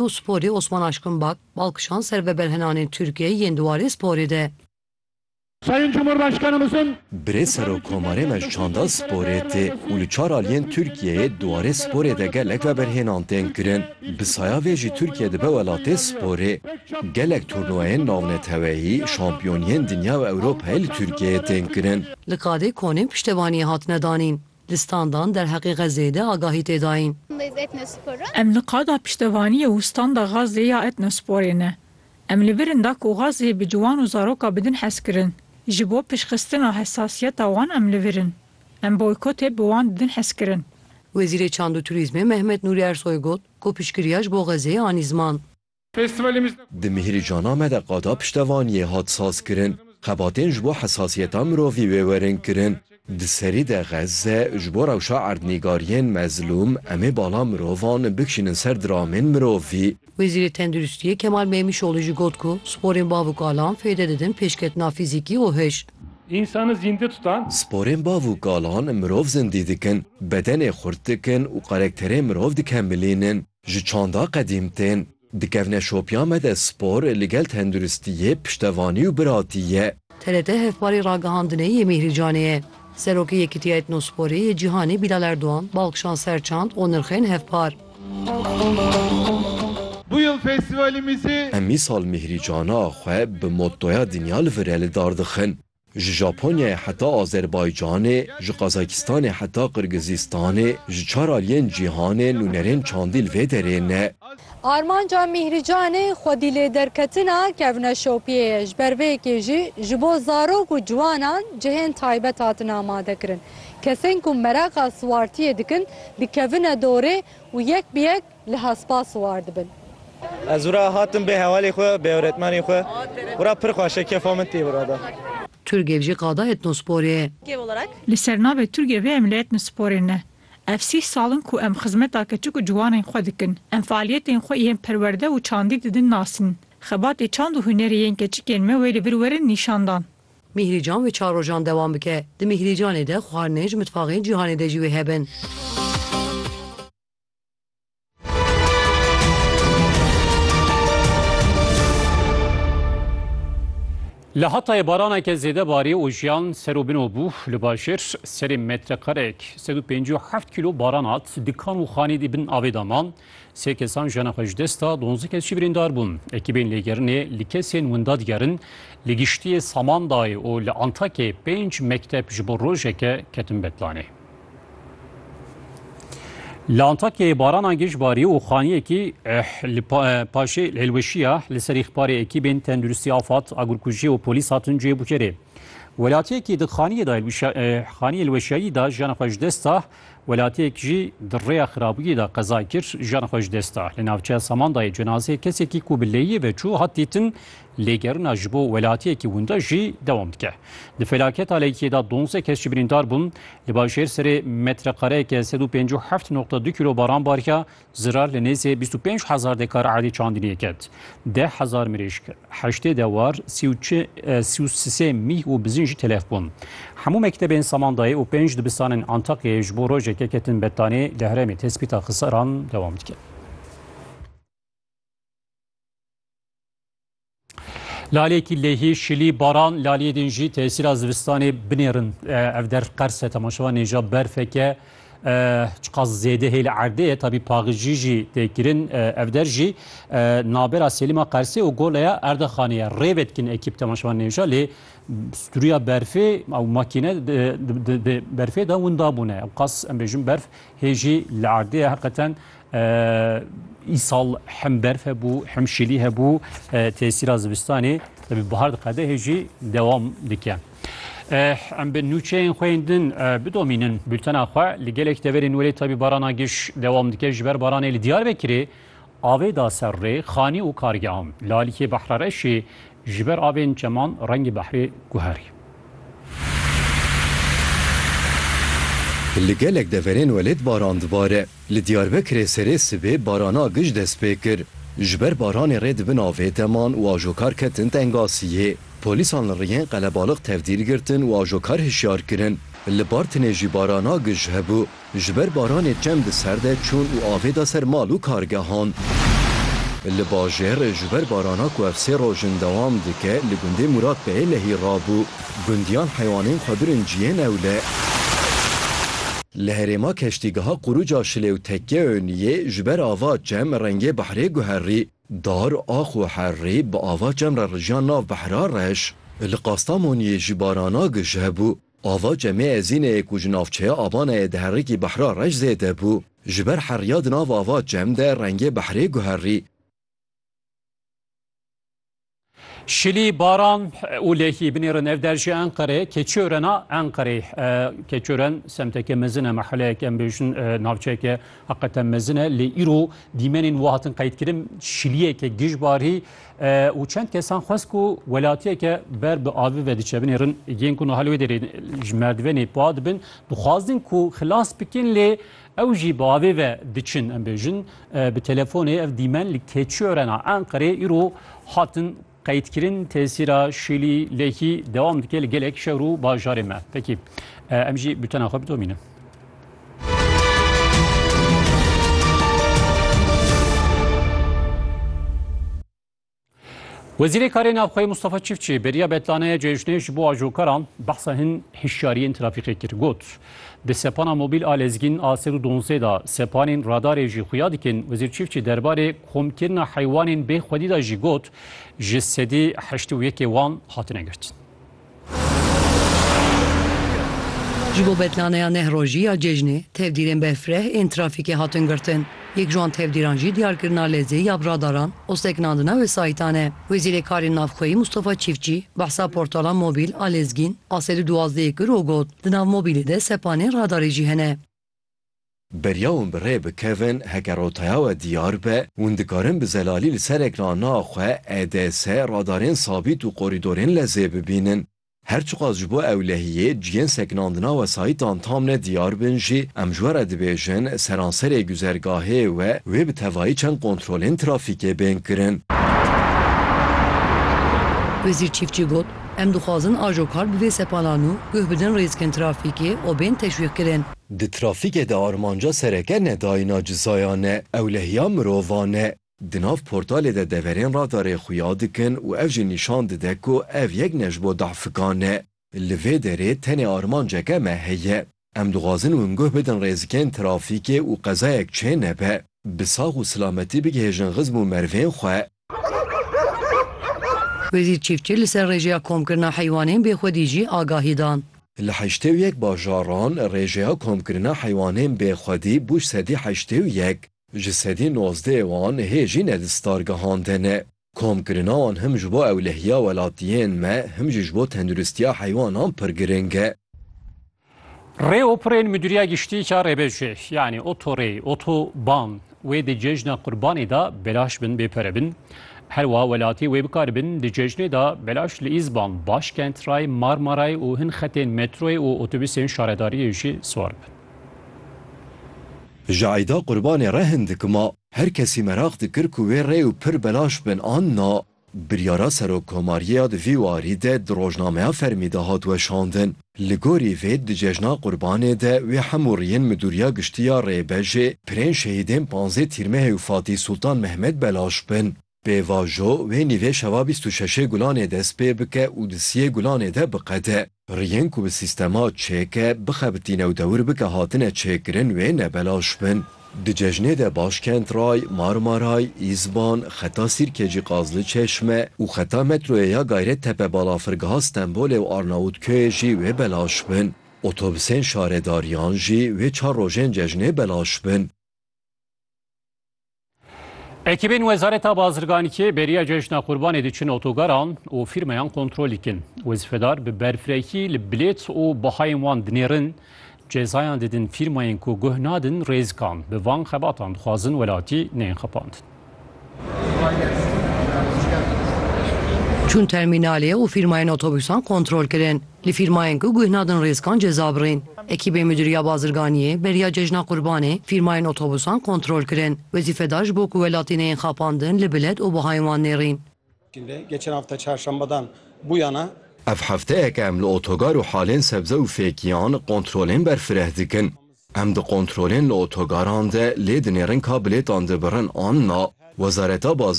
û Sporê Osman Aşkın Bak bal kişand ser veberhenanên Tirkiyeyê yên di warê sporê de. Sayın Cumhurbaşkanımızın. Birê Serokomarê me ji çanda sporê tê û li çar aliyên Tirkiyeyê di warê sporê de gelek veberhênan tên kirin. Bi saya vê jî Tirkiye dibe welatê sporê. Gelek turnuvayên navneteweyî, şampiyoniyên dinya û Ewropayê li Tirkiyeyê tên kirin. Li Kadê Konê piştevaniyê hatine danîn. Di standan derheqê Xezeyê de agahî tê dayîn. Em li qada piştevaniyê û standa Xazê ya Etnosporê ne. Em li vir in da ku Xazê bi ciwan û zaroka bi din hez kirin. Ji bo piştxistina hesasiyeta wan em li vir in. Em boykotê bi wan di din hez kirin. Wezîrê Çand û Turîzmê Mehmet Nûrî Ersoy got ku piştgiriya ji bo Xezê anî ziman. Di Mihîrîcana me de qada piştevaniyê hat sazkirin, xebatên ji bo hesasiyeta mirovî wê werin kirin. Di serî de Xezze ji bo rewşa erdnîgariyên mezlûm em ê bala mirovan bikişînin ser diramên mirovî. Wezîrê Tenduristiyê Kemal Meymîşoglû jî got ku sporên bav û kalan fêde didin pêşketina fîzîkî û hij. Sporên bav û kalan mirov zindî dikin, bedenê xurt dikin û karekterê mirov dikemilînin. Ji çanda qedîm tên, dikevne şopiya me de spor li gel tenduristiyê, piştevanî û biratî ye. TRT hevparê ragihandinê yê Mîhrî Canê ye. Serokê Yekîtiya Etnosporê yê Cîhanê Bîlal Erdogan balkişand ser çand û nirxên hevpar. Bu yıl festivalimizi. Em mîsal Mîhrî Cana xwe bi mottoya Dinya li vir e li dar dixin. Ji Japonyayê heta Azerbaycanê, ji Qazakistanê heta Qirgizistanê, ji çar aliyên cîhanê nûnerên çandî li vê derê ne. Armanca Mîhrî Canê xwedîlêderketina kevna şopiyê ye. Ji ber vê yekê jî ji bo zarok û ciwanan cihên taybet hatin amadekirin. Kesên ku meraqa siwartiyê dikin dikevine dorê û yek bi yek Liha spas war dibin. Ez wira hatim bê hevalê xwe, bê ewretmenê xwe. Wira pir xweş e, kefa min tê wira da. Turgev jî qada etnospor ê. Li ser navê Turgevê em li etnosporê ne. Ev sih sal in ku em xizmeta keçik û ciwanên xwe dikin. Em faaliyetên xwe yên perwerde û çandî didin nasîn. Xebatê çand û hunerê yên keçikên me wê li vir werin nîşandan. Mîhrîcan wê çar rojan dewam bike. Di Mîhrîcanê de xwarinên ji mitfaxên cîhanê de jî wê hebin. Li Hatayê baraneke zêde barî û jiyan ser û bin û bû. Li bajêr serê metrekareyek sed û pêncî û heft kîlo baran hat. Dikan û xanî di bin avê de man. Sê kesan jiyana xwe ji dest da, donzdeh kes jî birîndar bûn. Ekîbên lêgerinê li kesên winda digerin. Li giştiyê Samandayê û li Antakyayê pênc mekteb ji bo rojeke ketin betlanê. Li Antakyayê barana giş barî û xaniyekî li paşê hilweşiya li serî xparê ekîbên tenduristî afad agurkujî û polîs hatin cihê bûkerê. Welatiyekî di xaniyê da xaniyê hilweşiyayî da jiyana xwe ji dest da, welatiyek jî di rêya xirabûyê da qeza kir jiyana xwe ji dest da. Li navçeya Samandayê cenazeyê kesekî ku bi lêyê ve çû hat dîtin Lêgerina ji bo welatiyekî winda jî dewam dike. Di felaketa Leykiye de donzdeh kes jî birîndar bûn. Li bajêr serê metreqareyeke sed û pêncî û heft noqta du kîlo baran bariya, zirar li nêzê bîst û pênc hezar dekar erdê çandiniyê ket. Deh hezar mirîşk, heştê dewar, sî û çi, sî û sisê mîh û bizin jî telef bûn. Hemû mektebên Samandayê û pênc dibistanên Antakyayê ji bo rojeke ketin bettanê, li herêmê tespîta xesaran dewam dike. Lalêkî lêhî şilî baran laliyê din jî tesîra zivistanê binêrin ev der qerse temaşewa nêja berfeke çiqas zêde hê li erdê ye tabî paxijî jî tê kirin ev der jî nabera Selîma Qersê û goleya Erdaxanê ye rêvê dikin ekîp temaşewa nêja lê stûriya berfê ew makîne berfê de winda bûne ew qas em bêjin berf hê jî li erdê ye heqeten Îsal hem berf hebû hem şilî hebû tesîra zivistanê bi bihar diqedehê jî dewam dike. Em bi nûçeyên xwe yên din bidomînin bültena xwe li gelek deverên welê tabî barana giş dewam dike ji ber baranê li Diyarbekirê avê da ser rê xanî û kargehan. Li alîkê Behrareşê ji ber avên çeman rengê behrê guherî. Li gelek deverên welêt baran dibare. Li Diyarbekirê serê sibê barana gij dest pê kir. Ji ber baranê rê di bin avê de man û ajokar ketin tengasiyê. Polîsan li riyên qelebalix tevdîr girtin û ajokar hişyar kirin. Li Bartinê jî barana gij hebû. Ji ber baranê çem di ser de çûn û avê da ser mal û kargehan. Li bajêr ji ber barana ku ev sê roj in dewam dike li gundê Muratbeyê lehî rabû. Gundiyan heywanên xwe birin ciyê newle. Li herêma keştîgeha quruca Şilêwtekkeöniyê ji ber ava çem rengê behrê guherî. Dar, ax û herrî bi ava çem re rijiyan nav behra reş. Li Qastamoniyê jî barana gije bû. Ava Cemê Ezîneyê ku ji navçeya Abanayê di herikî Behra Reş zêde bû, ji ber heriya di nav ava Cem de rengê behrê guherî. Şilî, baran û lehî binêrin ev der ji Enqerê keçoren a Enqerê. Keçoren semteke mezin e, meheleyek em bêjin navçeyeke heqeten mezin e lê îro dîmenên wiha hatin qeydkirin. Şiliyeke gijbarî û çend kesan xwest ku welatiyeke ber bi avi ve diçebinê rin yên ku nihal wê derê ji merdivenê pa dibin dixwazin ku xilas bikin lê ew jî bi avê ve diçin em bêjin bi telefonê ev dîmen li keçorena Enqerê îro hatin qeydkirin tesîra şîlî lêkî dewam dike li gelek şewr û bajarê me pekî em jî butena xwe bidomînin. Wezîrê Karê Navxweyê Mustafa Çiftçî beriya betlaneye cejnê ji bo ajokaran behsa hin hişyariyên trafîkê kir. Got, Di sepana mobîl a lezgîn a sed û donzdeh de sepanên radarê jî xuya dikin. Wezîr Çiftçî derbarê komkirina heywanên bê xwedî de jî got, Ji sedî heşt û yekê wan hatine girtin. Ji bo betlaneya neh rojî ya cejnê, tevdîrên bevfireh ên trafîkê hatin girtin. Yek ji wan tevdîran jî diyarkirina lezê ya bi radaran û sekinandina wesayîtan e. Wezîrê Karên Navxweyî Mûstafa Çîftçî behsa portala mobîl a lezgîn a sed û duwazdehê kir û got, Di nav mobîlê de sepanên radarê jî hene. Beriya wan bi rê bikevin heke rotaya we diyar be, wan dikarin bi zelalî li ser ekranna xwe EDS, radarên sabît û korîdorên lezê bibînin. Her çiqas ji bo ewlehiyê cihên sekinandina wesayîtan tam ne diyar bin jî, em ji we re dibêjin seranserê guzergahê we wê bi tevayî çend kontrolên trafîkê bên kirin. Wezîr Çîftçî got, Em dixwazin ajo kar bi vê sepanan û guh bidin rîskên trafîkê û bên teşwîqkirin. Di trafîkê de armanca sereke ne dayîna cizayan e, ewlehiya mirovan e. Di nav portalê de deverên radarê xuya dikin û ev jî nîşan dide ku ev yek ne ji bo dahfikan e. Li vê derê tenê armanceke me heye. Em dixwazin hûn guh bidin rêzikên trafîkê û qezayek çê nebe. Bi sax û silametî bigihêjin xizm û merivên xwe. Wezîr Çîfçi li ser rêjeya komkirina heywanên bê xwedî jî agahî da. Li heştê û yek bajaran rêjeya komkirina heywanên bê xwedî bû sedî heştê û yek, ji sedî nozdehê wan hê jî ne di star gihandin e. Komkirina wan him ji bo ewlehiya welatiyên me him jî ji bo tenduristiya heywanan pir giring e. Rê û pirên Midûriya Giştî ya Rêbejê yanî otorê, otoban wê di cejna qurbanê de belaş bin bê pere bin. Her wa welatî wê bikaribin di cejnê de belaş li Îzban, Başkent, Ray, Marmaray û hin xetên metroyê û otobusên şaredariyê jî siwar bibin. Ji eyda qurbanê re hin dikima. Her kesî meraq dikir ku wê rê û pir belaş bin an na. Biryara Serokkomariyê ya di vî warî de di rojnameya fermî de hat weşandin. Li gorî vê di cejna Qurbanê de wê hemûriyên Midûriya Giştî ya Rêbejê, pirên şehîdên panzdeh Tîrmehê û Fatîh Sultan Mehmed belaş bin. Pêvajo wê nîvê şeva bîst û şeşê Gulanê dest pê bike û di siyê Gulanê de biqede. Pirr yên ku bi sîstema çêk e bixebitîne û dewir bike hatine çêkirin wê ne belaş bin. Di cejnê de Başkent Ray, Marmaray, Îzban, Xeta Sîrkecî Qazli Çeşme û Xeta Metroyê ya Gayrettepe Balafirgeha Stenbolê û Arnavutköyê jî wê belaş bin. Otobusên şaredariyan jî wê çar rojên cejnê belaş bin. Ekîbên Wezareta Bazirganîkê beriya Cejna Qurbanê diçin otogaran û fîrmayan kontrol dikin. Wezîfedar bi berfirekî li bilêt û bihayên wan dinêrin, cezayan didin fîrmayên ku guh nadin rêzikan. Bi van xebatan dixwazin welatî neyên xepandin. Çûn termînalê û fîrmayên otobûsan kontrol kirin. Li fîrmayên ku guh nadin rêzkan ceza birîn. Ekîbên Midûriya Bazirganiyê beriya Cejna Qurbanê fîrmayên otobusan kontrol kirin. Wezîfedar ji bo ku welatî neyên xapandin li bilet û bihayên wan nêrîn. Ev hefteyek em li otogar û halên sebze û fêkiyan kontrolên berfireh dikin. Em di kontrolên li otogaran de lê dinêrin ka bilêtan dibirin an na. Wezareta